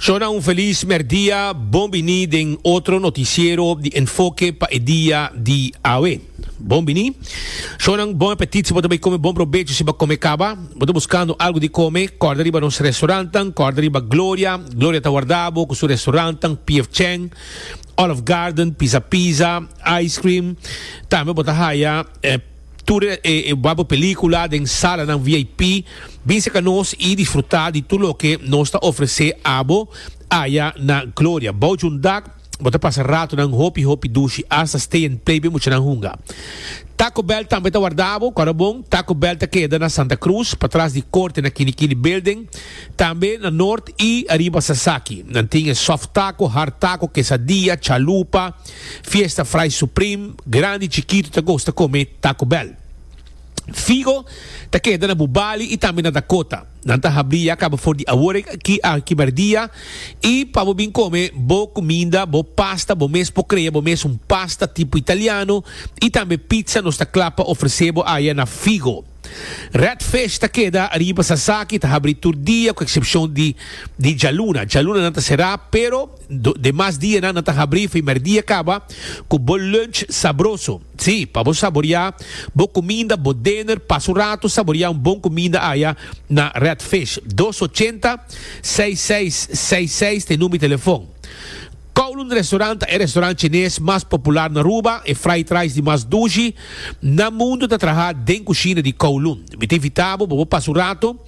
Shona un felis merdia, bon bini den otro noticiero di Enfoke pa e dia di awe. Bon bini. Shonan bon apetit si bo ta bay come bon probecho si bo a come caba. Bo ta buscando algo di come, corda riba nos restaurantnan, corda riba Gloria, Gloria ta warda bo cu su restaurantnan PF Chang, Olive Garden, Pizza Pizza, Ice Cream, tambe bo ta haya e. Tur e wak bo película den salanan VIP. Bin serka nos i disfrutá di tur loke nos ta ofresé abo aya na Gloria. Bou djun dak, bo ta pasa ratonan hopi hopi dushi hasta stay and play, bin muchanan hunga. Taco Bell tambe ta warda bo. Kòrda bon, Taco Bell ta keda na Santa Cruz, patras di Korte na Kini Kini Building. Tambe na Nort i ariba Sasaki. Nan tin e soft taco, hard taco, kesadia, chalupa. Fiesta Fry Supreme, grandi y chikitu ta gosta come Taco Bell. Figo ta keda na bu bali y tambe na Dakota. Nan ta habri ya caba for di awor aki a kiberdia y pa bo bin come bo cuminda, bo pasta, bo mes por crea bo mes un pasta tipo Italiano y tambe pizza nos ta cla pa ofrece bo aya na Figo. Red Fish ta keda riba Sasaki, ta habri tur dia cu excepcion di di djaluna. Djaluna nan ta cera pero. Demas dianan nan ta habrí fimer dia kaba ku bo lunch sabroso. Sí, pa bo saboriá bo kuminda, bo dener, pasa un ratu saboriá un bon kuminda aya na Red Fish. Dos ochenta, seis seis seis seis ta e number di telefòn. Kowloon Restaurant ta e restaurant chines mas popular na Aruba, e fried rice di mas dushi na mundu ta trahá den kushina di Kowloon. Mi ta invitá bo pa bo pasa un ratu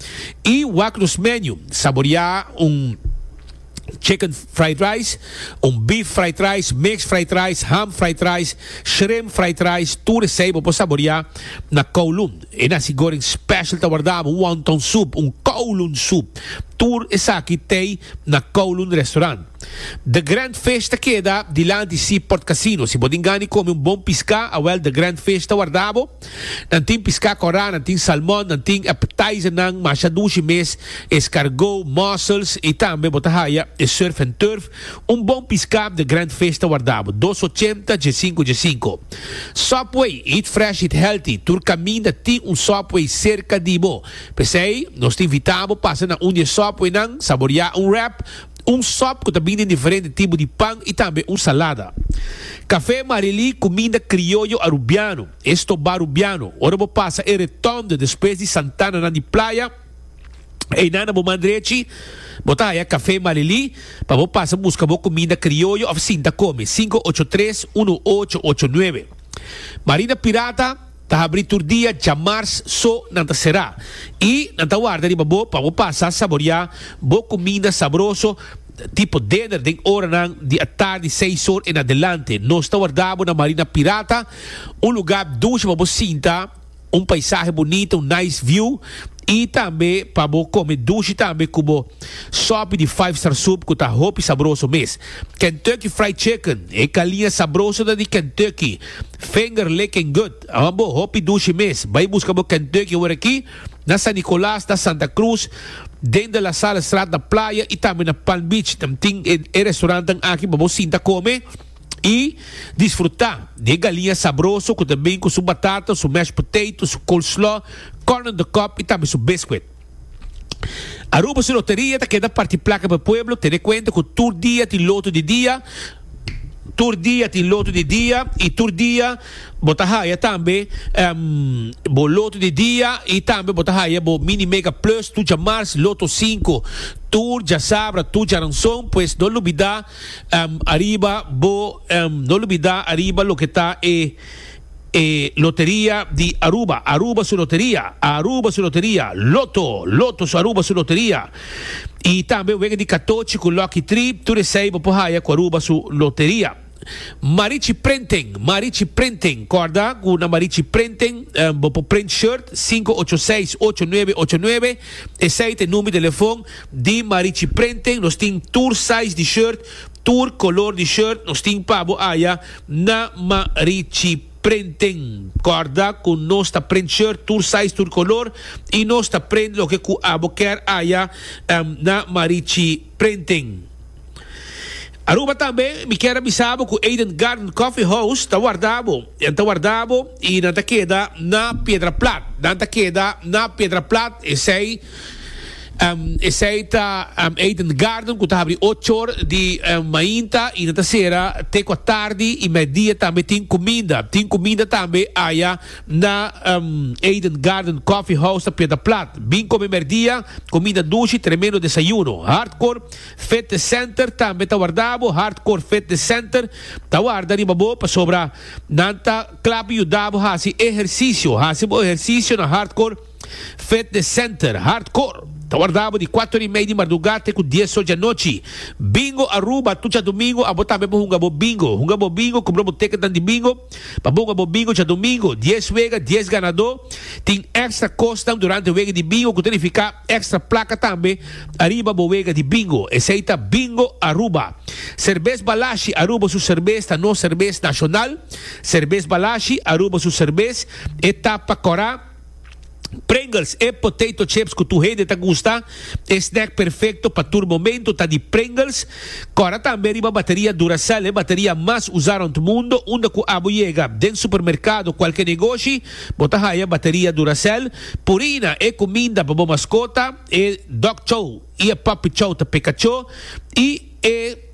i wak nos menu, saboriá un. chicken fried rice, un beef fried rice, mixed fried rice, ham fried rice, shrimp fried rice, tur esei bo por saborea na kowloon. E nasi goreng special ta wardabo, un wonton soup, un kowloon soup. Tur esaki tei na Kowloon Restaurant. The Grand Fish ta keda dilanti Seaport Casino. Si bo tin gana di kome un bon piská, awel The Grand Fish ta wardabo. Nan tin piská korá, nan tin salmon, nan tin appetizernan masha dushi mes, escargot, mussels i tambe bo ta haya e surf en turf, un bon piská den Grand Fish ta warda bo dos ochenta dje sinku dje sinku. Subway, eat fresh eat healthy, tur kaminda tin un Subway serka di bo, p'esei nos ta invitá bo pasa na un di e Subwaynan, saboriá un wrap, un sòp ku ta bini den diferente tipo di pan i tambe un salada. Kafé Marily kuminda krioyo arubiano, e stobá arubiano. Ora bo pasa e Retònde despues di Santananan di Playa, einan na bo man drechi bo ta haya Kafé Marily pa bo pasa buska bo kuminda krioyo òf sinta kome, sinku ocho tres uno ocho ocho nuebe. Marina Pirata. Ta habri tur dia dja mars so nan ta será i nan ta warda riba bo pa bo pasa saboriá bo kuminda sabroso tipo dinner den oranan di atardi seis or en adelante. Nos ta warda bo na Marina Pirata, un lugá dushi pa bo sinta, un paisahe bunita, un nice view, i tambe pa bo kome dushi tambe ku bo sòpi di Five Star Soup ku ta hopi sabroso mes. Kentucky Fried Chicken, e kaliña sabroso ta di Kentucky. Vinger licking good. Awan bo hopi dushi mes. Bai buska bo Kentucky ora aki, na San Nicolas, na Santa Cruz, den De La Salle straat na Playa y tambe na Palm Beach. Nan tin e e restaurantenan aki pa bo sinta come y disfruta di e galiña sabroso cu ta bin cu su batata, su mashed potato, su coleslaw, corn on the cob y tambe su biscuit. Aruba su loteria ta keda parti plaka pa e pueblo, tene kuenta ku tur dia tin loto di dia, tur dia tin loto di dia i tur dia bo ta haya tambe bo loto di dia i tambe bo ta haya bo mini mega plus tu djamars loto sinku tur djasabra tur djaranson pues no lubida ariba bo no lubida ariba loke ta e E loteria di Aruba, Aruba su loteria, Aruba su loteria, Lotto, Lotto su Aruba su loteria, y tambe wega di katochi cu Lucky Tree, tur esey bo por haya cu Aruba su loteria. Marichi Printing, Marichi Printing, corda cu na Marichi Printing bo por print shirt, cinco ocho seis, ocho nuebe ocho nuebe, esey ta e number di telefon di Marichi Printing, nos tin tur size di shirt, tur color di shirt, nos tin pa bo haya. Na ma Richie prenten corda cu nos ta prent shirt tur size tur color y nos ta prent loke cu abo ker aya na ma Richie prenten Aruba tambe mi ker a bisa bo cu Eden Garden Coffee House ta warda bo nan ta warda bo y nan ta keda na Piedraplat nan ta keda na Piedraplat esey Esei ta Eden Garden cu ta habri ocho or di mainta y nan ta cera te cua tardi y medidia tambe tin cuminda. Tin cuminda tambe aya na Eden Garden Coffee House ta Piedra Plat. Bin come merdia, cuminda dushi, tremendo desayuno. Hardcore Fitness Center tambe ta warda bo. Hardcore Fitness Center ta warda riba bo pasobra nan ta clap yuda bo haci ehercicio. Haci bo ehercicio na Hardcore. Fitness Center, Hardcore, ta warda bo di kuater i mei di mardugá te ku dies ocho di anochi. Bingo Aruba, Tucha Domingo abo tambe bo hunga bo bingo. Hunga bo bingo, kumpra bo teketnan di bingo pa bo hunga bo bingo Tucha Domingo. Dies wega, dies ganadó. Tin èkstra kosnan durante wega di bingo ku ta nifiká èkstra plaka tambe ariba bo wega di bingo. Esei ta Bingo Aruba. Serbes Balashi, Aruba su serbes ta nos serbes nashonal. Serbes Balashi, Aruba su serbes e ta pa kòrá. Pringles, e potato chips cu tur hende ta gusta, e snack perfecto pa tur momento ta di Pringles. Cora tambe riba bateria Duracell, e bateria mas usa rond mundo. Unda cu abo yega, den supermercado, cualke negoshi, bo ta haya bateria Duracell. Purina, e cuminda pa bo mascota, e dog chow y e puppy chow ta peca cho. Y e.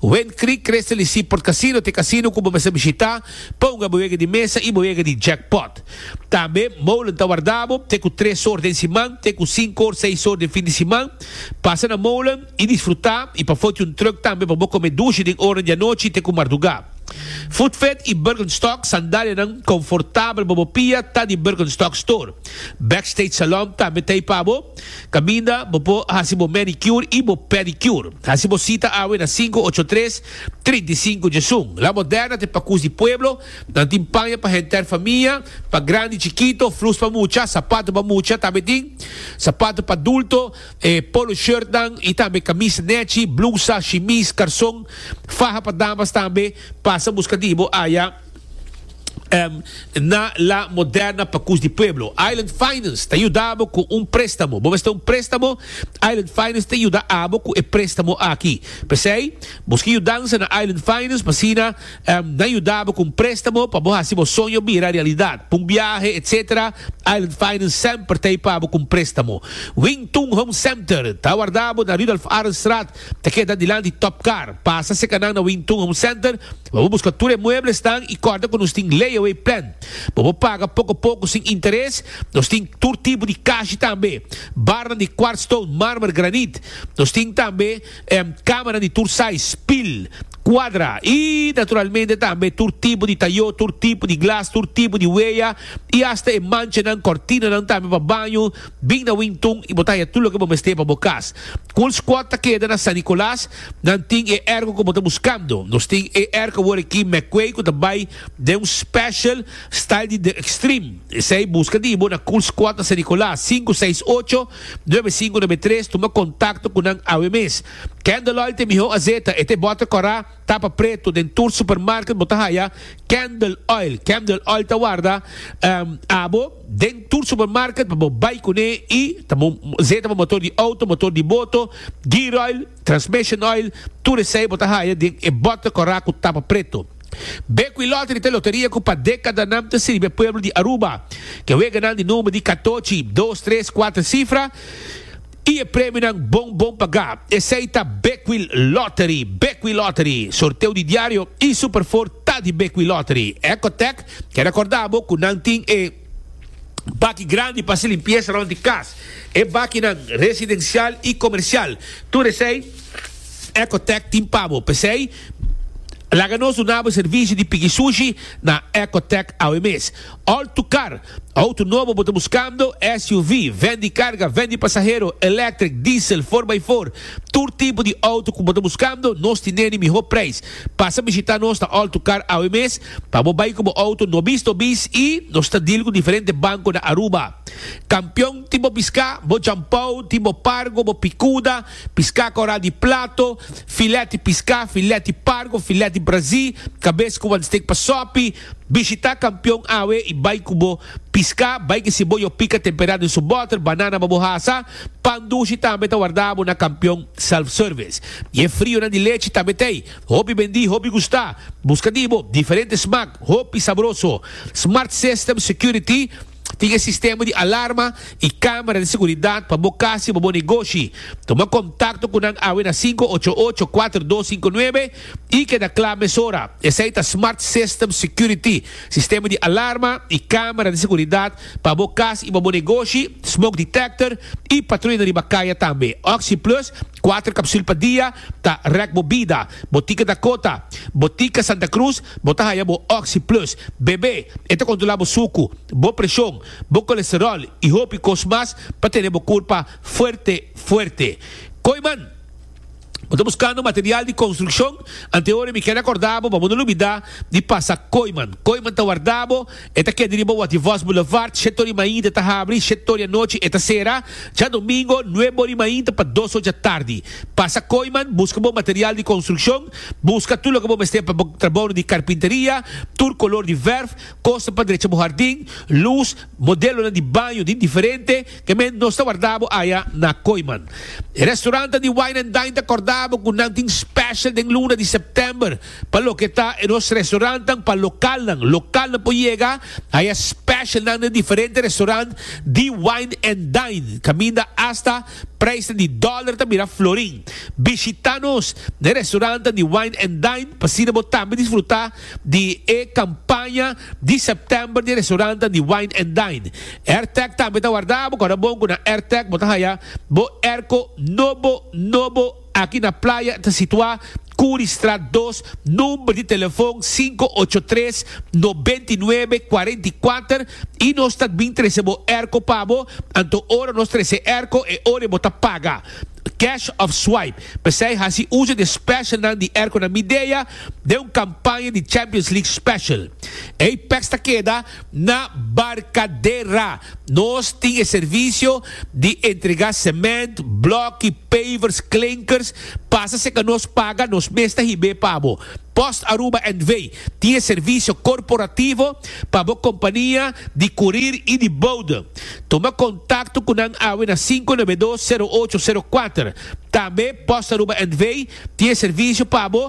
Wen Creek Crystal y Seaport Casino t'e casino cu bo mester bishita pa hunga bo yega di mesa y bo yega di jackpot. Tambe Molen ta warda bo te cu tres or den siman te cu cinco or seis or den fin di siman. Pasa na Molen y disfruta y pa foti un truck tambe pa bo come dushi den oranan di anochi te cu marduga. Food Fed y Birkenstock sandalianan confortabel pa bo pia ta di Birkenstock Store. Backstage Salon tambe t'ey pa bo. Caminda, bo por haci bo manicure y bo pedicure. Haci bo cita awe na sinku ocho tres, trinta i sinku dje sun. La Moderna ta e pacus di pueblo. Nan tin paña pa henter famia, pa grandi, chikito, flus pa mucha, sapato pa mucha, tambe tin sapato pa adulto, e polo shirtnan y tambe camisa nechi, blusa, shimis, carson, faha pa damas tambe. Pasa busca di bo aya. na La Moderna pa Cus di Pueblo. Island Finance ta yuda abo cu un prestamo. Bo mester un prestamo? Island Finance ta yuda abo cu e prestamo aki. P'esey, bo ski yudanza na Island Finance, p'asina nan yuda abo cu un prestamo pa bo haci bo soño bira realidad. P'un biahe, etc. Island Finance semper ta ey pa abo cu un prestamo. Wing Tun Home Center ta warda abo na Rudolph Arendstraat. Ta keda dilan di Top Car. Pasa cerca nan na Wing Tun Home Center, bobo busca tur e mueblesnan y corda cu nos tin layaway plan. Bobo paga poco poco sin interes. Nos tin tur tipo di cashi tambe. Barnan di quartz stone, marmer, granite. Nos tin tambe camanan di tur size, pil, cuadra y naturalmente tambe tur tipo di tayo, tur tipo di glas, tur tipo di huella y hasta e manchanan, cortinanan tambe pa baño. Bin na Wington i bo ta haña tur loke bo mester pa bo kas. Cool Squad ta keda na San Nicolas. Nan tin e ergo ku bo ta buskando. Nos tin e ergo awor aki McQuay ku ta bai den un special style di The Extreme. Esei buska di bo na Cool Squad na San Nicolas, sinku seis ocho, nuebe sinku nuebe tres. Tuma kontakto ku nan awe mes. Ken Deloitte Miho Azeta, e ta e bòter kòrá. Tapa pretu, den tur supermarket bo ta haya candle oil. Candle oil ta warda abo den tur supermarket pa bo bai cune y ta bo zeta bo motor di auto, motor di boto, gear oil, transmission oil, tur esey bo ta haya den e bote cora cu tapa pretu. Bequi Lottery ta e loteria cu pa decadanan ta sirbi e pueblo di Aruba. Ke weganan di nomber di Catochi, dos, tres, cuater cifra. Y e premionan bon bon pagá. Esei ta Beckwil Lottery, Beckwil Lottery, sorteo di diario y Super Four ta di Beckwil Lottery. Ecotec ke recorda bo cu nan tin e baki grandi pa haci limpieza rond di cas. E bakinan residencial y comercial. Tur esei Ecotec tin pa bo. P'esei laga nos dunabo e servicio di pigi sushi na Ecotec awe mes. Alto Car, Auto nobo bo ta buscando, SUV, Ven di carga, ven di pasahero, electric, diesel, four by four, tur tipo di auto cu bo ta buscando, nos tin den di miho prijs. Pasa bishita nos na Alto Car awe mes pa bo bay cu bo auto nobis nobis y nos ta deal cu diferente banco na Aruba. Campeon tin bo pisca, bo jampao, tin bo pargo, bo picuda, pisca coral di plato, filet di pisca, filet di pargo, filet di brazi, cabes cu wan steak pa sopi, Bishita kampion awe i bai ku bo piská. Bai kisi bo yo pika temperá den su bòter, banana pa bo hasa. Pan dushi tambe ta wardabo na kampion self-service. I e frionan di lechi tambe t'ei. Hopi bendí, hopi gustá. Buska di bo diferente smak, hopi sabroso. Smart System Security. Tin e sistema di alarma i kamera di seguridat pa bo kas i pa bo negoshi. Tuma kontakto ku nan awe na sinku ocho ocho kuater dos sinku nuebe i keda kla mesora. Esei ta Smart System Security, sistema di alarma i kamera di seguridat pa bo kas i pa bo negoshi, smoke detector i patrulha na riba kaya tambe. Oxi Plus, kuater kapsul pa dia, ta rèk bo bida. Botica Dakota, Botica Santa Cruz, bo ta haya bo Oxy Plus, BB, e ta controla bo sucu, bo presion, bo colesterol y hopi cos mas pa tene bo curpa fuerte fuerte. Koiman, Bo ta buscando material di construccion? Antehoren mi keda corda bo pa bo no lubida di pasa Koiman. Koiman ta warda bo. E ta keda riba What If Us Boulevard, shèt ori mainta ta habri, shèt ori anochi e ta sera. Djadomingo, nuebe ori mainta pa dos or djatardi. Pasa Kooiman, buska bo material di konstrukshon, buska tur loke bo mester pa bo trabounan di karpinteria, tur kolor di vèrf, kosnan pa drecha bo hardin, lus, modelonan di baño di diferente, ke men nos ta warda bo aya na Kooiman. E restorantan di Wine and Dine ta kòrda bo ku nan tin special den luna di sèptèmber. Pa loke ta e nos restaurantnan pa lokalnan, lokalnan por yega a e specialnan den diferente restaurant di Wine and Dine, caminda hasta prijsnan di dollar ta mira florin. Bishita nos na e restaurantnan di Wine and Dine pa asina bo tambe disfruta di e campaña di September di e restaurantnan di Wine and Dine. Airtag tambe ta warda bo, kòrda bon cu na Airtag bo ta haya bo airco nobo nobo. Aki na playa ta situá Currystraat dos, number di telefon sinku ocho tres noventa i nuebe kuarenta i kuater i nos ta bin trese bo erko pa bo, anto ora nos trese erko e ora bo ta paga, cash of swipe. P'esei hasi uso di e specialnan di erkonan Midea den un kampaña di Champions League special. Ei pèks ta keda. Na Barcadera nos tin e servicio di entrega cement, blokki, pavers, klinkers, pasa si ka nos paga nos mes ta hib'é pa bo. Post Aruba NV. tin e servicio corporativo pa bo compania di curir y di bode. Tuma contacto cu nan awe na sinku nebe dos, sero ocho, sero kuater. Tambe Post Aruba NV. tin e servicio pa bo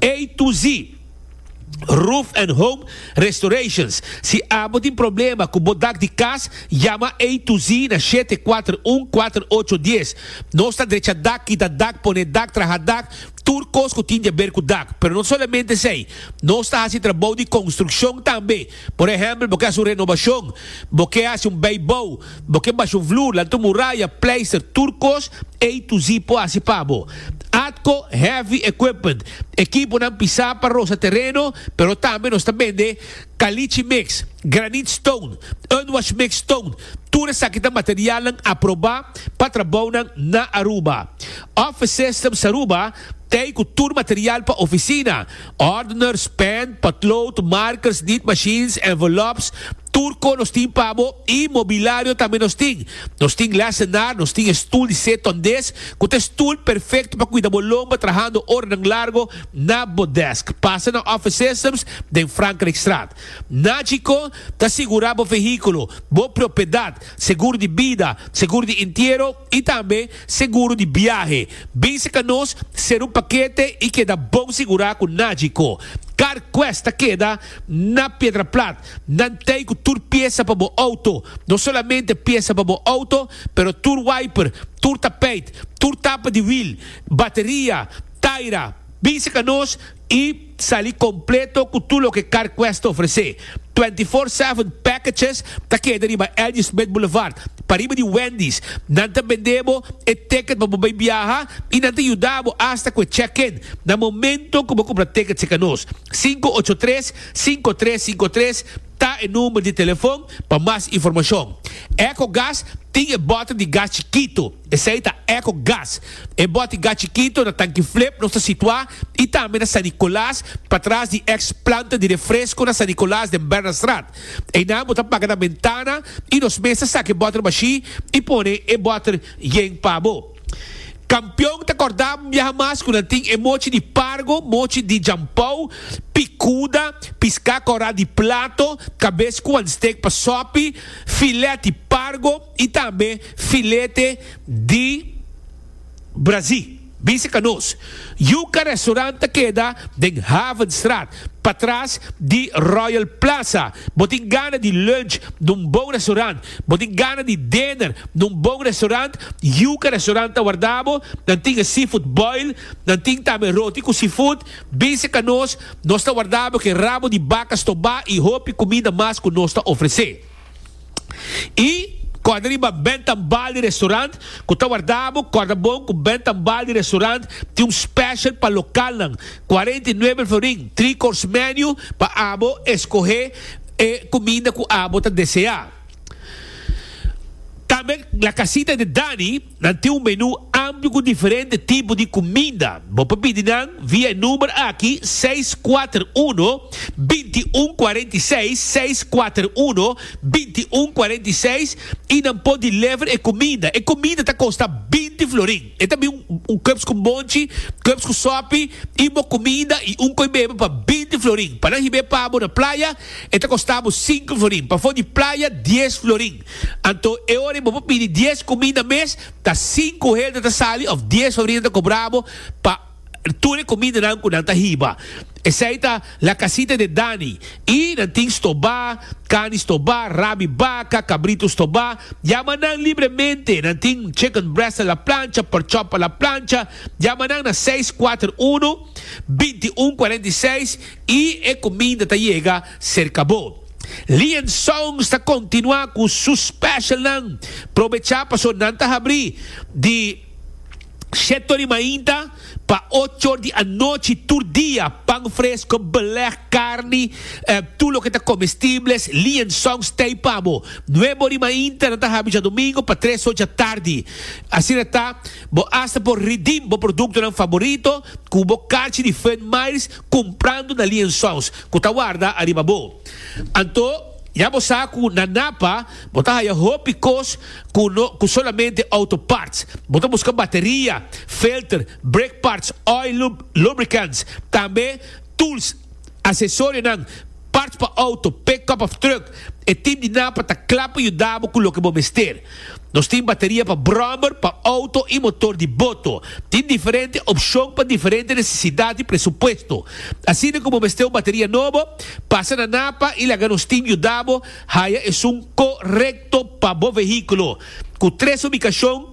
Ey tu zi Roof and Home Restorations. Si abo tin problema cu bo dak di cas, yama Ey tu zi na shete kuater un kuater ocho dies. Nos ta drecha dak, kita dak, pone dak, traha dak, tur cos cu tin di haber cu dak. Pero no solamente esey, nos ta haci trabou di construccion tambe. Por ehèmpel, bo ke hasi un renobashon, bo ke hasi un beibou, bo ke basha un vloer, lanta un muraya, pleister, tur kos, ei Tuzi por hasi pa bo. Atco Heavy Equipment, Ekiponan pisá pa rosa tereno, pero tambe nos ta bende Caliche Mix, Granite Stone, Unwash Mix Stone, tur esaki ta materialnan aprobá pa trabounan na Aruba. Office Systems Aruba, Tei cu tur material pa oficina, ordeners, pen, potlood, markers, niet machines, envelops, tur con nos tin pa bo y mobilario tambe nos tin. Nos tin lessenaar, nos tin e stoel di seton des cu ta e stoel perfecto pa cuida bo lomba trahando oranan largo na bo desk. Pasa na Office Systems den Frankrijkstraat. Nagico ta sigura bo vehiculo, bo propiedad, seguro di bida, seguro di entiero y tambe. Seguro di biahe, Base ca nos ser un pakete i keda bon sigurá ku nadji ko Car Quest ta keda na Piedraplat. Nan tei ku tur piesa pa bo outo, no solamente piesa pa bo outo, pero tur wiper, tur tapeit, tur tapa di wiel, bateria, taira. Base ca nos i. Sali completo cu tur loke CarQuest ta ofrece. Twenty Four Seven Packages ta keda riba Elgie Smith Boulevard, pariba di Wendy's. Nan ta bende bo e ticket pa bo bay biaha y nan ta yuda bo hasta cu e check-in na momento cu bo cumpra ticket cerca nos. Cinco ocho tres, cinco tres cinco tres ta e number di telefon pa mas informacion. Ecogas tin e bottle di gas chikito. Esei ta Echo Gas. E bòti gas chikito na tanki flip nos ta situá i tambe na San Nicolas, patras di ex planta di refresko na San Nicolas den Bernardstraat. Einan bo ta paga na bentana i nos mes ta saka e bòter mashí i pone e bòter yen pa bo. Kampion ta kòrda biaha mas ku nan tin e mochi di pargo, mochi di jampou, pikuda, piská kòrá di plato, kabes ku wan stek pa sòpi, filèt di pargo, y tambe filete di brazi. Bisa ca nos. Yuca Restaurant ta keda den Havenstraat, patras di Royal Plaza. Bo tin gana di lunch na un bon restaurant? Bo tin gana di dinner na un bon restaurant? Yuca Restaurant ta warda bo. Nan tin e seafood boil, nan tin tambe roti cu seafood. Bisa ca nos, nos ta warda bo cu e rabo di baca stobá y hopi cuminda mas cu nos ta ofrece. I kòrda riba bènt tambal di restaurant ku ta wardá bo. Kòrda bon ku bènt tambal di restaurant tin un special pa lokalnan, cuarenta y nueve el florin, three course menu pa abo eskohé e kuminda ku abo ta deseá. Tambe La Casita de Dani. Nan tin un menú amplio ku diferente tipo di kuminda. Bo por pidi nan via e number aki seis kuater uno, binti un kuarenta i seis, seis kuater uno, binti un kuarenta i seis, i nan por deliver e kuminda. E kuminda ta kosta binti florin. E ta bin un kèps ku monchi, kèps ku sòpi, i bo kuminda i un koi bebe pa binti florin. Pa nan hib'é pa bo na playa, e ta kosta bo sinku florin. Pafó di playa, dies florin. Anto e ora bo por pidi dies cuminda mes ta sinku hende ta sali of dies sobrina ta cobra bo pa tur e cumindanan cu nan ta hiba. Esey ta La Casita de Dani y nan tin stobá, cani stobá, rabi baca, cabrito stobá, yama nan libremente, nan tin chicken breast a la plancha, pork chop a la plancha, yama nan na seis kuater unu, binti un kuarenta i seis y e cuminda ta yega Serka bo. Lian Songs ta continua cu su special nan. Probecha paso nan ta habri di Shetto di mainta pa ochor di anochi tur dia, pan fresco, beleg, carni, tur loke ta comestibles, Lian Songs tey pa bo. Nuebo di mainta nan ta habi djadomingo pa tres or djatardi. Asina ta bo hasta por redeem bo productonan favorito cu bo carchi di Fun Miles Kumprando na liensons ku ta warda ariba bo. Anto, ya bo sa ku na Napa bo ta haya hopi kos ku no ku solamente outo parts. Bo ta buska bateria, filter, brake parts, oil lube, lubricants, tambe tools, asesorionan, parts pa outo, pickup of truck, e tip di nan pa ta kla pa yuda bo ku loke bo mester. Nos tin bateria pa brommer, pa outo i motor di boto. Tin diferente opshon pa diferente nesesidat i presupuesto. Asina ku bo mester un bateria nobo, pasa na NAPA i laga nos tin yuda bo haya esun korekto pa bo vehíkulo. Ku tres ubikashon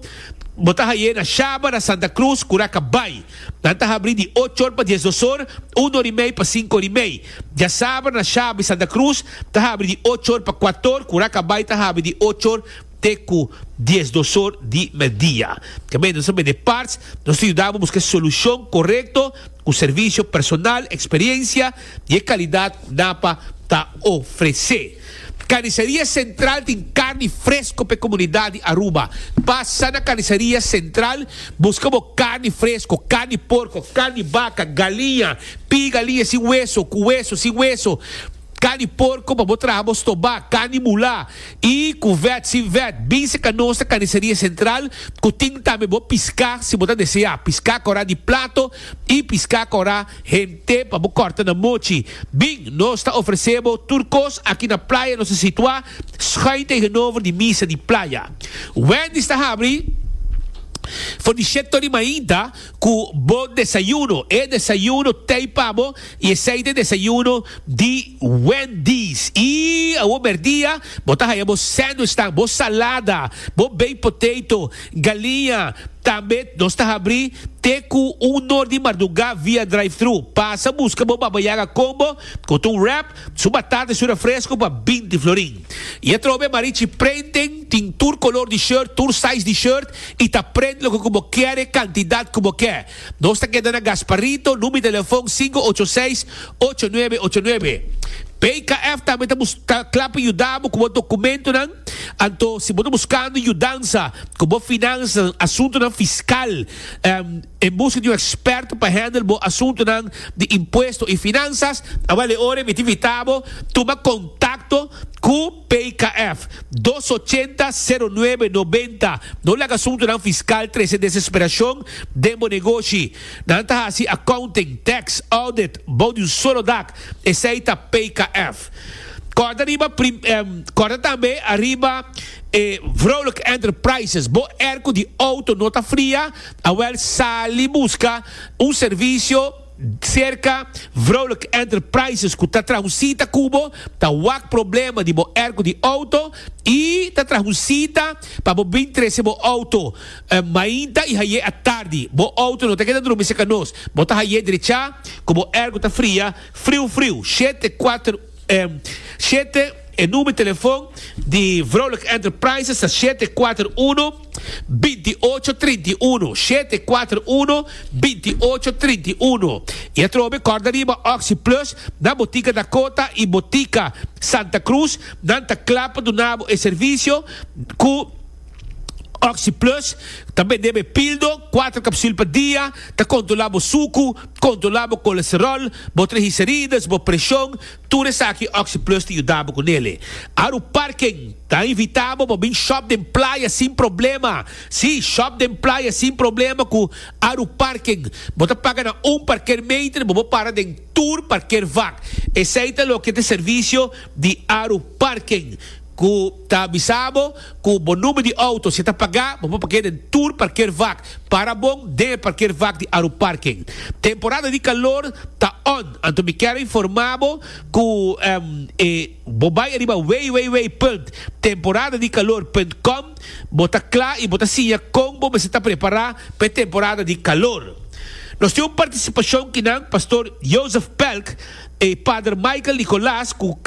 bo ta hay'é na Shabara, Santa Cruz, Curaca Bay. Nan ta habrí di ocho or pa dies dos or, un or i mei pa sinku or i mei. Djasaber na Shabri Santa Cruz ta habri di ocho or pa kuat or, ku Rakabay ta habri di ocho or te ku dies dos or di mèddia. Kemey nos ta bende parts, nos ta yuda bo buska e solushon korekto ku servisio personal, eksperiensia, di e kalidat napa ta ofresé. Karniseria Sentral tin karni fresko pa e komunidat di Aruba. Pasa na Karniseria Sentral, buska bo karni fresko, karni porko, karni baka, galiña, piga liña sin weso, ku weso, sin weso, karni porko pa bo traha bo stobá, karni mulá i ku vèt, sin vèt. Bin seka nos na Karniseria Sentral ku tin tambe bo piská si bo ta deseá, piská korá di plato i piská korá. Te pa bo kòrta na mochi. Bin, nos ta ofresé bo tur kos aki na playa nos ta situá skuin tegenover di misa di playa. Wendy's ta habri for di shet tori mainta ku bo desayuno. E desayuno tei pa bo i esei ta e desayuno di Wendy's. I awo merdia bo ta haya bo sandwichnan, bo salada, bo baked potato Galia, Tambet nos ta habri te ku un nor di mardugá via drive-thru. Pasa buska bo Baba Yaga Combo ku ta un wrap, su batata i su refresco pa binti florin. I atrobe Marichi Printing tin tur kolor di shirt, tur size di shirt i ta print loke ku bo kere, kantidat ku bo ke. Nos ta keda na Gasparito, number di telefon sinku ocho seis, ocho nuebe ocho nuebe. PKF tambe ta klapi yuda bo ku bo dokumentonan. Anto, si bo ta buskando yudansa ku bo finansanan, asuntunan fiskal, en buska di un eksperto pa hendel bo asuntunan di impuesto i finansas, a bale ora mi ta invitá bo tuma kontakto ku PKF, dos ochenta, sero nuebe, nobenta. No laga asuntunan fiskal trese desesperashon den bo negoshi. Nan ta hasi accounting, tax, audit, bou di un solo dak, esei ta PKF. West. Kòrda riba Kòrda tambe ariba e Vrolijk Enterprises. Bo er ku di outo no ta fria, awèl sali buska un servisio serka Vrolijk Enterprises ku ta traha un sita ku bo, ta wak problema di bo er ku di outo i ta traha un sita pa bo bin trese bo outo mainta i haié atardi. Bo outo no ta keda drumi serka nos. Bo ta haié drechá ku bo er ku ta fria. Friu Friu, shete kuater em, shete E number telefon di Vrolijk Enterprises ta shete kuater uno, binti i ocho, trinta i uno, shete kuater uno, binti i ocho, trinta i uno. I atrobe kòrda riba Oxi Plus na Botica Dakota i Botica Santa Cruz, nan ta kla pa duna bo e servisio ku. Oxy Plus ta bende be pildo, kuater kapsul pa dia, ta kontrolá bo suku, kontrolá bo kolesteròl, bo trigiserides, bo preshon, tur esaki Oxy Plus ta yuda bo ku nele. Aru Parken ta invitá bo pa bin shòp den playa sin problema. Sí, shòp den playa sin problema ku Aru Parken. Bo ta paga na un parkeermeter, bo por para den tur parkeervak. Esei ta loke ta servisio di Aru Parken ku ta bisa bo. Cu bo number di auto si ta pagá, bo por parkea den tur parkeervak. Para bon den e parkeervak di Aruparking. Temporada di calor ta on, anto mi ker a informa bo cu e bo bay ariba www. Temporadadicalor.com bo ta cla y bo ta siña con bo mester ta prepara pa e temporada di calor. Nos tin un participacion kinan Pastor Joseph Pelk y Pader Michael Nicolas cu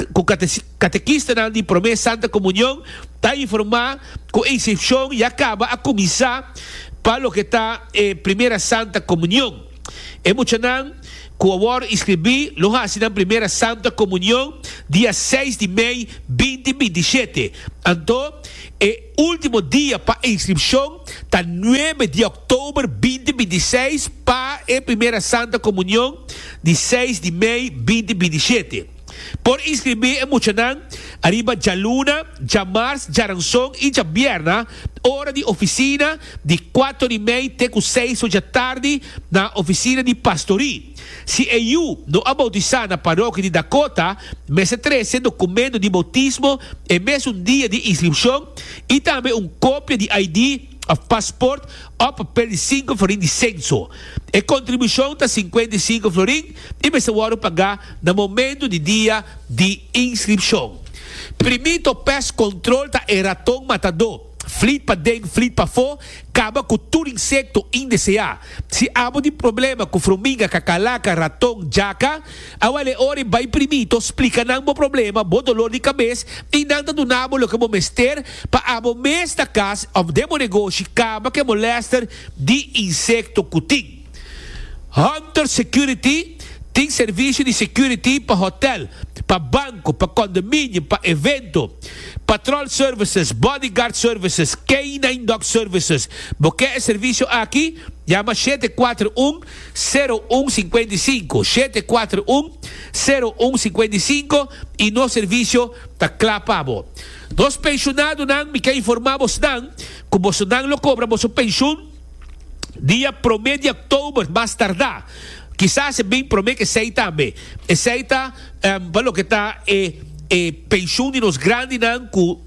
Katekistanan di Promé Santa Komunion ta informá ku Ensepshon ya kaba a kuminsá pa loke ta e Primera Santa Komunion. E muchanan ku a wòrdu inskribí lo hasi nan Primera Santa Komunion dia seis di mei binti binti shete. Anto e último dia pa inskripshon ta nuebe di òktober binti binti seis pa e Primera Santa Komunion di seis di mei binti binti shete. Por inscribí e muchanan ariba djaluna, djamars, djaranson i djabierna ora di oficina di kuato di mei te ku seis ocha tardi na oficina di pastorí. Si e yu no a boutisá na parokia di Dakota, mester trese dokumento di boutismo e mesun dia di inskripshon i tambe un kopia di ID. of pasport of pedi sinku florin di senso. E kontribushon ta sinkuenta i sinku florin i mester wòrdu pagá na momentu di dia di inskripshon. Primit of pest control ta e raton matadó, flit paden flit pafó, kaba ku tur insekto indeseá. Si abo tin problema ku frominga, kakalaka, raton, jaka, A wale ora i bai primito splika nan bo problema, bo dolor di kabes i nan ta duna bo loke bo mester pa abo mes na kas òf den bo negoshi kaba ku e molèster di insekto ku tin. Hunter Security tin servisio di security pa hotèl, pa banko, pa kondominio, pa evento. Patròl Services, Bodyguard Services, K-nine Dog Services. Bo ke e servisio aki? Yama shete kuater un sero un singkuenta i sinku, shete kuater un, sero un singkuenta i sinku, i nos servisio ta kla pa bo. Nos penshunadonan mi ke informá bosnan ku bosonan lo kobra boso penshun dia promé di òktober mas tardá, kisas e bin promé ku esei tambe. Esei ta pa loke ta e e penshun di nos grandinan ku.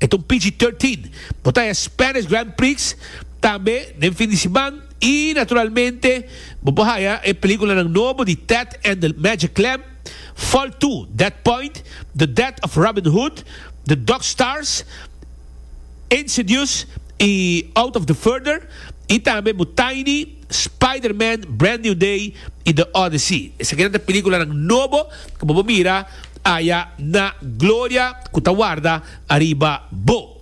E ta un pg thirteen. Bo ta e Spanish Grand Prix tambe den fin di siman y naturalmente bo por haya e peliculanan nobo di Ted and the Magic Lamp, Fall Two, Dead Point, The Death of Robin Hood, The Dog Stars, Insidious y Out of the Further y tambe bo Tiny. Spider-Man, Brand New Day y The Odyssey. Esakinan ta peliculanan nobo cu bo por mira aya na gloria cu ta warda ariba bo.